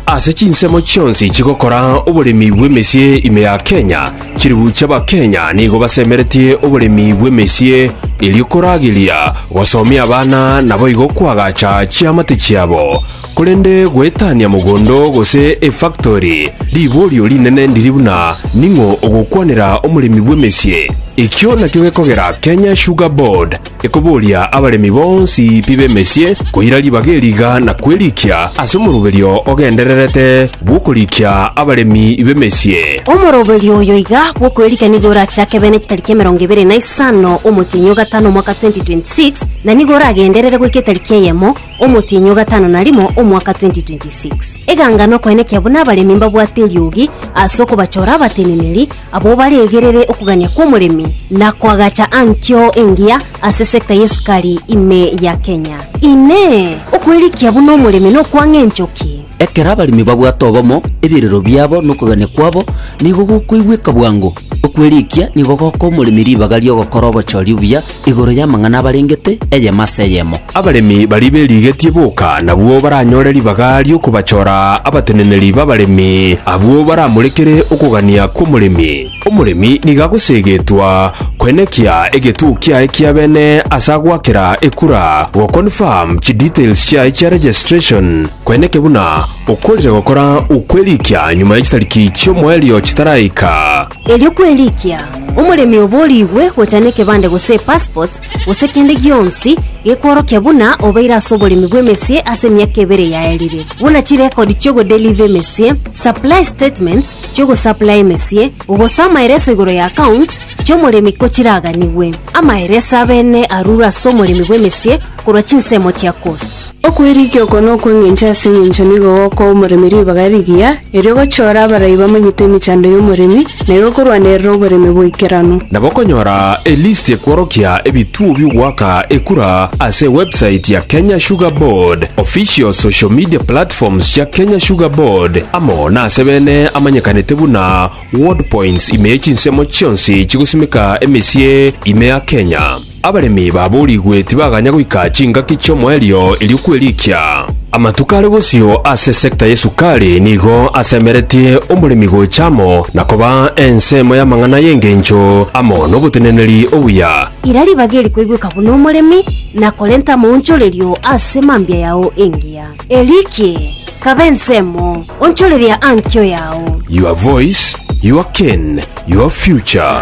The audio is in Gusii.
Ase chinsemo chionsi chigokora oboremi bw'emesie ime ya Kenya, chilifu chi'Abakenya nigo basemeretie oboremi bw'emesie erio korageria gosomia abana naboigo koagacha chiamate chiabo. Korende goetania mogondo gose efactori riborio rinene ndiri buna ning'o ogokwanera omoremi bw'emesie. Ekio nakio gekogera Kenya Sugar Board Ekoboria abaremi bonsi pi b'emesie koira ribaga eriga na kwerikia ase omoroberio ogendererete bw'okorikia abaremi b'emesie. Omoroberio oyo iga bw'okwerikia nigo orachake bene chitariki emerongo ebere na isano omotienyi o gatano omwaka 2026 na nigo oragenderere goika etariki eyemo omotienyi o gatano na rimo omwaka 2026. Eganga nokoenekia buna abaremi mbabwate eriogi ase okobachora abateneneri Abwo baregerere okogania kw'omoremi na koagacha ankio engiya ase sector y'esukari ime ya Kenya. Inee! Okwerikia buna omoremi nokwang'a enchoki? Ekero abaremi babwate obomo, ebirero biabo na okogania kwabo nigo gokoigweka bwango. Okwerikia nigo gokoa omoremi ribaga ri'ogokora obochori obuya igoro y'amang'ana abarengete, eyemo ase eyemo. Abaremi baria berigetie boka nabwo baranyore ribaga ri'okobachora abateneneri b'abaremi, abwo baramorekere okogania kw'omoremi. Omoremi nigo agoseegetwa koenekia egetuo kiaye kia bene ase agoakera ekura, goconfirm chidetails chiaye chia registration, koenekia buna okorire gokora okwerikia nyuma ye chitariki chi'omoerio chitaraika. Erio kwerikia omoremi oborigwe gocha nekebande gose epassport gose kende gionsi gekworokia buna obeire ase oboremi bw'emesie ase emiaka ebere yaerire, buna chirekodi chi'ogodeliva emesie, supply statements chi'ogosaplaya emesie, gose amaereso igoro ya accounts chi'omoremi ko chiraganigwe. Amaereso abene arure ase omoremi bw'emesie korwa chinsemo chia cost. Okwerigia oko nokw'engencho ase engencho nigo gokoa omoremi ribaga rigiya, erio gochiore abarai bamanyete emechando y'omoremi, na igo korwanerera oboremi boikeranu. Nabo okonyora elisti ekworokia ebituo bi'ogoaka ekura ase ewebsite ya Kenya Sugar Board, official social media platforms chia Kenya Sugar Board, amo nase bene amanyekanete buna Ward Points ime chinsemo chionsi chigosimeka emesie ime ya Kenya. Abaremi baboorigwe tibaganya goika chingaki chi'omoerio erio kwerikia. Amatuko are bosio ase sector y'esukari nigo asemeretie omoremi gocha amo na koba ensemo y'amang'ana y'engencho amo n'oboteneneri obuya. Ira ribaga eri koigweka buna omoremi na korenta amaonchorerio ase mambia yao engiya. Erikie, kaba ensemo, onchoreria ankio yao. Your voice, your cane, your future.